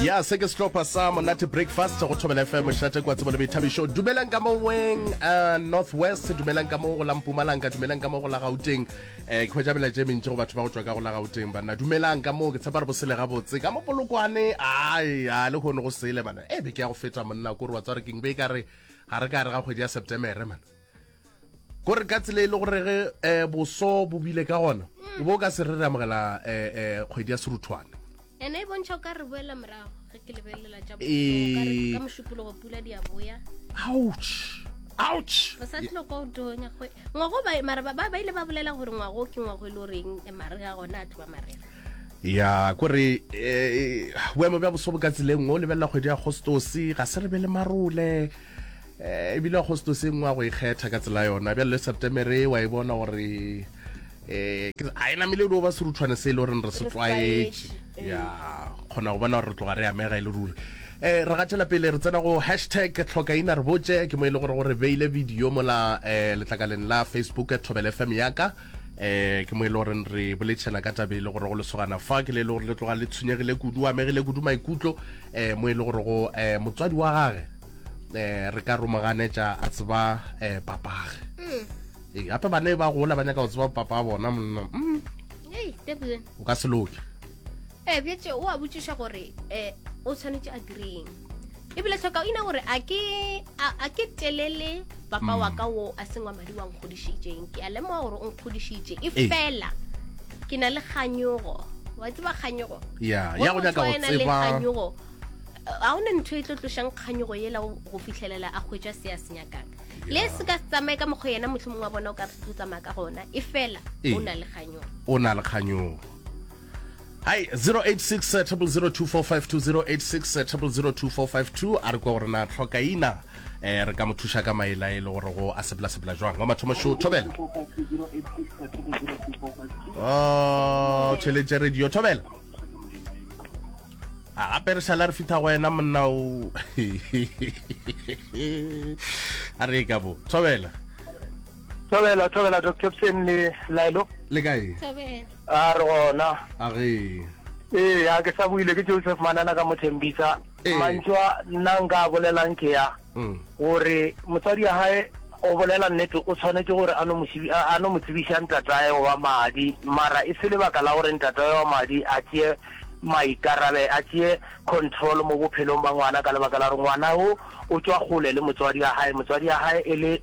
ya se ke sehlopha sa monate breakfast go thobela fm šate kwa tsebo le boithabišo dumelang ka moweng uh, north west dumelang ka mo go la mpumalanga dumelang ka mo go la gauteng um ke hwetša melaetša e mentši go batho ba go tšwa ka go la gauteng banna dumelang ka moo ke tshepa re bosele gabotse ka mo polokwane ai a le kgone go sele mana e eh, be ke ya go feta monna kore wa tswa re keng be e ka re ga re ka re ga kgwedi ya septemere mana ko re ka tsela e le gore ge um boso bo bile ka gona o bo o ka se re re amogela um kgwedi ya seruthwane ene e bontšha o ka re boela morago ge ke lebelelela tša ka mošupologo pula di a boya ouch ouch re sa tlilo kwa otonya go ngwago ba mara ba ba ile ba bolela gore ngwago ke ngwago e le goreng e mare ga gona a tloba marena ya ko re boemo bja boso bo ka tseleng o lebelela kgwedi ya agostose ga se re be le marole Eh, ebile agostoseng wa go ikgetha ka tsela yona bjale le septemere wa e bona gore um ga e namele o ba serutshwane se e le goreng re se tlwaetše ya kgona go bona gore re tloga re amega e le ruri um re gatšhela pele re tsena go hashtag tlhokaina re botse ke mo e le gore gore beile video mola um letlakaleng la facebook thobele fm yaka eh ke mo e le gore re boletšhela ka tabe e le gore go lesogana fa ke le e le gore le tloga le tshwenyegile kudu o amegile kudu maikutlo eh mo e le gore go eh motswadi wa gage eh re ka romaganetša a tseba eh papage mm. ee gape bana e ba gola ba nyaka go tseba papa bona monna mm. o ka se loke ee bjetse o a botšiša gore um o tshwanetse a direng ebile tlhoka o ina gore a ke telele papa wa ka wo a sengwa madi wa nkgodišitseng ke a lemoga gore o nkgodišitše e fela ke na le kganyogo wa tseba kganyogo ya go nyaka go tseba kganyogo ga o ne ntho e tlo tlošang kganyogo yela go fitlhelela a hwetša se a se nyakang le se ka tsamaye ka mokgwa yena motlho mongwe wa bona o ka re tlo tsamaya ka gona e fela o na le kganyogo o na le kganyogo Hai 0860002452 0860002452 a re kwa gore na tlhoka ina eh re ka mo thuša ka maela e le gore go a sepela sepela jwang wa mathomo show thobela oh tšheletse radio thobela a gape re šala re fitha go wena monna o a re ka bo thobela thobela thobela dr psen le laelo le kae A re gona. A re. Ee, a ke sa buile ke Joseph Manana ka Mothembisa. Ee. Mantšwa nna nka a bolelang ke ya gore motswadi ya gae o bolela nnete o tshwanetše gore a no mo šibi- a a no mo tsebiša ntatae wa madi mara e se lebaka la gore ntatae wa madi a tšee maikarabe a tšee control mo bophelong ba ngwana ka lebaka la gore ngwana wo o tšwa kgole le motswadi ya gae motswadi ya gae e le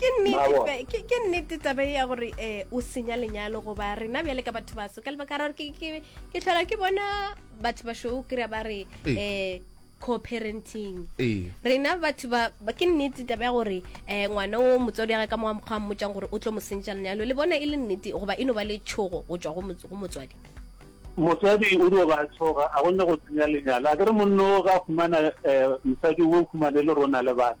ke nnete ke nnete tabe ya gore um o senya lenyalo goba rena bjale ka batho baso ka lebaka ra gore ke tlhola ke bona batho basho o kry-a ba re um co-parenting rena batho ba ke nnete tabe ya gore um ngwana o motswadi ya ga ka moga mokgwa mmotšang gore o tlo mo sentša lenyalo le bona e le nnete goba e no ba le tšhogo go tswa go motswadi motswadi o dio ba tshoga a gonne go tsenya lenyalo a kere monno ga fumana um mosadi o fumane le rona le bana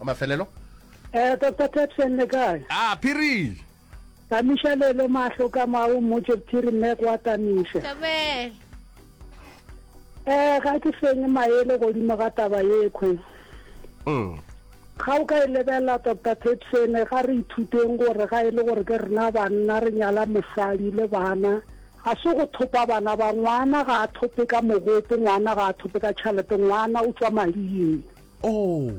wa mafelelo Eh, Dr. Tapsen le kae? a phiri Tamisha lelo mahlo ka mao mmotse phiri mme kwa Tamisha. Tabel. Eh, ga ke fenye maele godimo ga taba yekhwe. Mm. Ga o ka e lebelela Dr. Tapsen ga re ithuteng gore ga e le gore ke rena banna re nyala mosadi le bana ga se go thopa bana ba ngwana ga a thope ka mogopo ngwana ga a thope ka tšhalete ngwana o tswa mading Oo!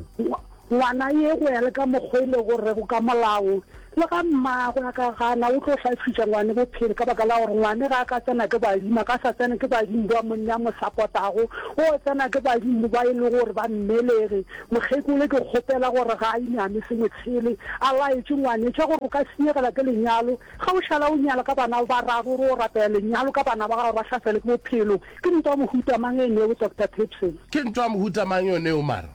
Ngwana ye go ya le ka mokgwa e lego rego ka molao, le ga mmagwe a ka gana, o tlo hlafiša ngwane bophelo ka baka la gore ngwane ga a ka tsena ke badimo, a ka sa tsena ke badimo ba monna a mo sapotago, o tsena ke badimo ba e lego gore ba mmelege. Mokgekolo ke kgopela gore ga a iname sengwe sele, a laetše ngwanetša gore o ka senyegela ke lenyalo, ga o šala o nyala ka bana ba bararo, re o rapela lenyalo ka bana ba gago ba hlaselwe ke bophelo. Ke ntwa mohuta mang e neo, Doctor Petrus? Ke ntwa mohuta mang e neo, Maro?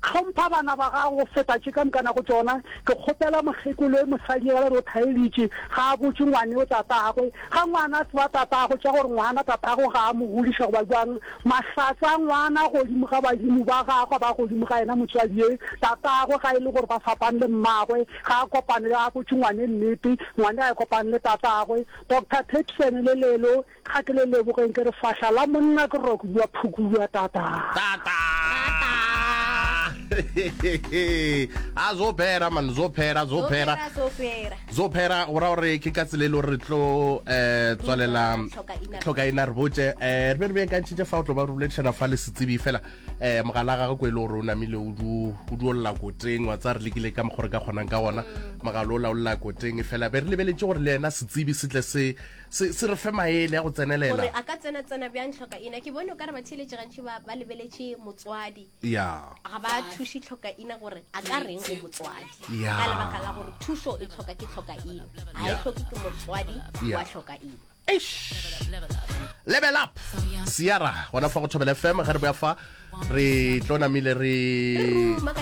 Hlompha bana ba gago go feta tše ka moka nago tšona. Ke kgopela mokgekolo e mosadi ge re o thaelitše, ga a botše ngwaneo tatagwe. Ga ngwana a tseba tatagwe, tša gore ngwana tatagwe ga a mo godiša goba bjang. Mahlatse a ngwana godimo ga badimo ba gagwe ba godimo ga yena motswadi ye tatagwe, ga e le gore ba fapane le mmagwe. Ga a kopane le, ga a botše ngwane nnete, ngwane ga a kopane le tatagwe. Doctor Peterson le lelo Ga ke le lebogeng ke re fahla la monna ke roko bua phukubua tata. Tata. a zo phera man zo phera zo phera zo phera go ra gore ke ka tsela e le gore re tlo um tswalela tlhokaina re botse um eh, re be re beakantšhitše fa o tlo ba re boledišana fa le setsebi fela um mogala gagwe ko e le gore o namile o duolola koteng wa tsa re lekile ka mokgwa re ka kgonang ka gona mm. mogala o laolola koteng e fela be re lebeletse gore le yena setsebi se tle se se, se re fe maele a go tsenelela gore a ka tsena tsena bjang tlhokaina ke bone o ka re batheeletše gantši ba, ba lebeletše motswadi ya ga ba thuše tlhokaina gore a ka reng go motswadi Ya. ka lebaka la gore thušo e tlhoka ke tlhokaina ga e Ya. tlhoke ke motswadi Ya. wa tlhokaina level up siara gona fa go thobela fm ge re boya fa re tlo namile re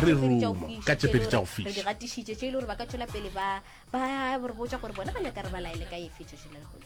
re ruma ka tšepedi tša go re di fiša gatišitše tše e le gore ba ka tšwela pele ba ba re botša gore bona ba nyaka re ba laele ka efe tšhoši le lehono